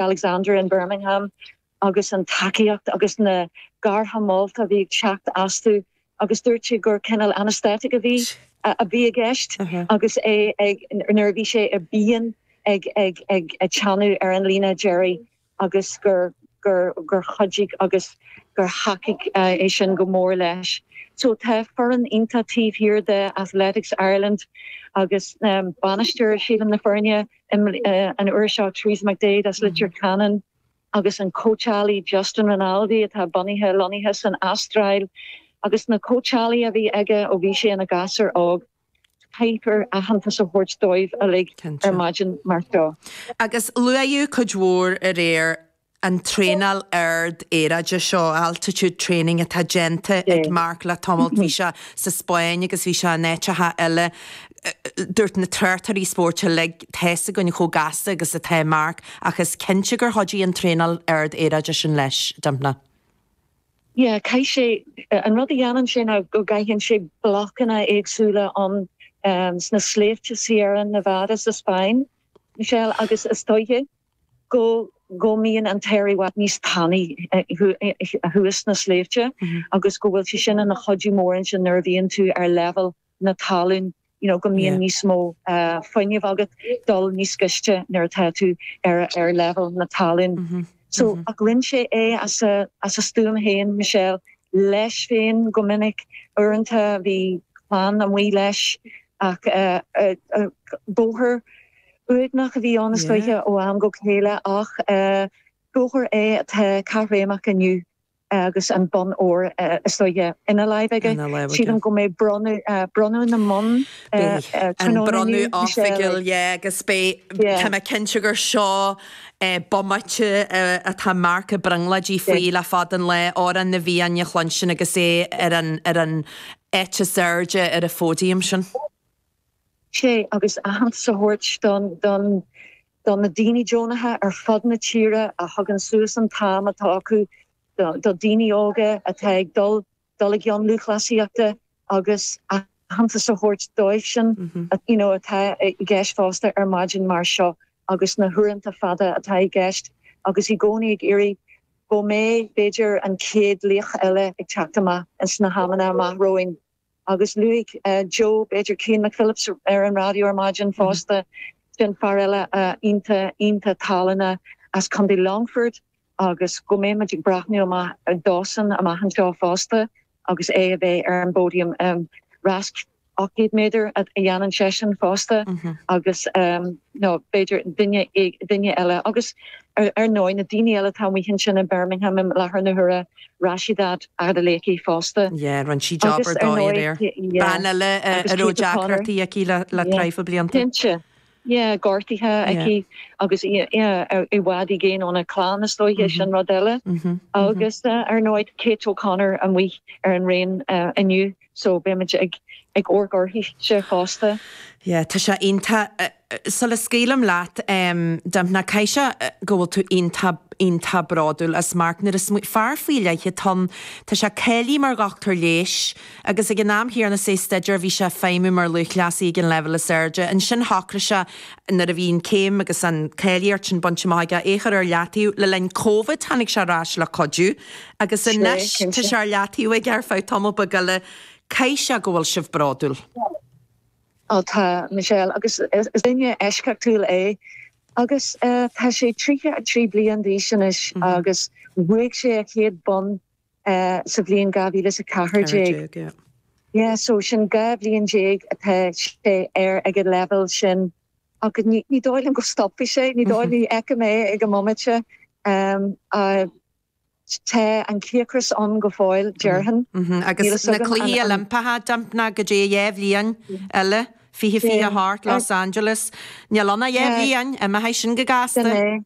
Alexander in Birmingham agus an tacaíocht agus na gartha molta a bhí ag teacht uathu agus dúirt sé gur cineál anaesthetic a bhí a bhí i gceist agus é ag nuair a bhí sé i bpian ag ag ag ag teannadh ar an líne Gerry agus gur gur gur chuidigh agus gur thacaigh é sin go mór leis. So tá foireann iontach taobh thiar de Athletics Ireland agus bainisteoir sílim na foirne an uair seo Teresa McDaid as Leitir Ceanainn agus an cóitseálaí Justin Rinaldi atá bunaithe, lonnaithe san Astráil agus na cóitseálaí a bhí aige ó bhí sé ina gasúr óg. Caithfear aitheantas a thabhairt dóibh uilig ar maidin mar seo. Agus luaíodh cuid mhór aréir an traenáil ard aeráide seo, altitude training, atá déanta ag Marc le tamalt. Bhí sé sa Spáinn agus bhí sé in áiteacha eile. Dúirt na tráchtairí spóirt uilig, tá's againn chomh gasta agus atá Marc ach is cinnte gur chuidigh an traenáil ard aeráide sin leis, Dympna. Yeah, caith sé, an rud a dhéanann sé ná go gcaitheann sé blocanna éagsúla ann sna sléibhte Sierra Nevada sa Spáinn, Michelle, agus is dóiche, go mbíonn an t-aer i bhfad níos tanaí thuas sna sléibhte agus go bhfuil sé sin ina chuidiú mór ansin nuair a bhíonn tú ar leibhéal na talún, you know go mbíonn níos mó fuinnimh agat dul níos gaiste nuair atá tú ar leibhéal na talún. So ach rinne sé é as a stuaim féin, Michelle, leis féin go minic, uaireanta bhí clann amuigh leis ach bóthar Uaigneach a bhí ann is dóiche ó am go chéile ach bóthar é atá caithréimeach inniu agus an bonn óir is dóiche ina láimh aige. Sílim go mbeidh bronnadh na mbonn an bronnadh oifigiúil agus tá mé cinnte gur seo é bomaite atá Mark ag brionglóid faoi le fada an lá, Amhrán na bhFiann a chluinstin agus é ar an eite is airde ar an phóidiam sin. sé agus aitheantas a thabhairt do do na daoine deonacha ar fud na tíre a thugann suas an t-am atá acu do dhaoine óga atá ag dul i gceann lúthchleasaíochta agus aitheantas a thabhairt dóibhsean atá i gceist fosta ar maidin mar seo agus na huaireanta fada atá i gceist agus i gcónaí ag iarraidh go mbeidh b'fhéidir an chéad laoch eile ag teacht amach sna hamanna amach romhainn. Agus luaigh Joe, b'fhéidir, Cian McPhillips ar an raidió ar maidin fosta, sin fear eile iontach iontach tallannach as Contae Longfort agus go mbeidh muid ag breathnú amach dósan amach anseo fosta agus é a bheith ar an bpóidiam. Rás 800 méadar a dhéanann seisean fosta agus nó b'fhéidir duine duine eile. Agus ar ndóigh, na daoine eile atá amuigh ansin i mBirmingham i láthair na huaire, Rhasidat Adeleke fosta. Yeah, rinne sí job ar dóigh aréir. Bean eile a raibh deacrachtaí aici le traidhfil blianta. Yeah, cinnte. Yeah, gortaithe aici agus í i bhfad i gcéin óna clann is dóiche, sin rud eile. Agus ar ndóigh Kate O'Connor amuigh ar an raon inniu. So beimid ag amharc orthu fosta. Yeah, tá sé iontach. Sula scaoilim leat, Dympna, caithfidh sé go bhfuil tú iontach, iontach bródúil as Mark. Nó is fear faoi leith é. Tá, tá sé cáilithe mar dhochtúir leighis agus ag an am a rinne sé staidéar bhí sé ag feidhmiú mar lúthchleasaí ag an leibhéal is airde. Ansin shocraigh sé, nuair a bhí an chéim agus an cháilíocht sin bainte amach aige, é a chur ar leataobh. Le linn Covid tháinig sé ar ais le cuidiú. Agus anois, tá sé ar leataobh aige ar feadh tamall beag eile. Caithfidh sé go bhfuil sibh bródúil. Ó tá, Michelle, agus is duine eisceachtúil é. Agus tá sé 33 bliain d'aois anois agus bhuaigh sé a chéad bonn sa bhliain 2014. So sin dhá bhliain déag atá sé air ag an leibhéal sin. Ach ní dóigh liom go stopfaidh sé, ní dóigh, ní fheicim é ag an mbomaite. Tá an cíocras ann go fóill, déarfainn. Agus na Cluichí Oilimpeacha Dympna, go dtí dhá bhliain eile, fiche, fiche a hocht, Los Angeles. Níl ann ach dhá bhliain, imeoidh sin go gasta. Sin é.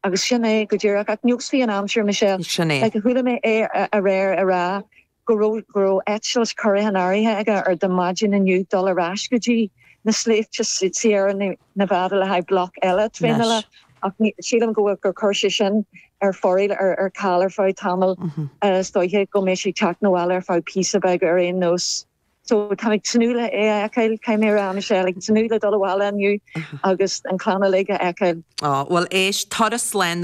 Agus sin é go díreach. Ach neosfaidh an aimsir, Michelle. Sin é. Chuala mé é aréir ag rá go raibh go raibh eitilt curtha in áirithe aige ar do maidin inniu dul ar ais go dtí na sléibhte Sierra Nevada le haghaidh bloc eile traenála, ach ní, sílim go bhfuil, gur chuir sé sin ar foraoil ar ar ceal ar feadh tamaill, is dóiche go mbeidh sé ag teacht chun an bhaile ar feadh píosa beag ar aon nós. So táim ag tnúth le é a fheiceáil, tá mé féin, Michelle, ag tnúth le dul abhaile inniu agus an chlann uilig a fheiceáil. Á, bhuel, éist, turas le.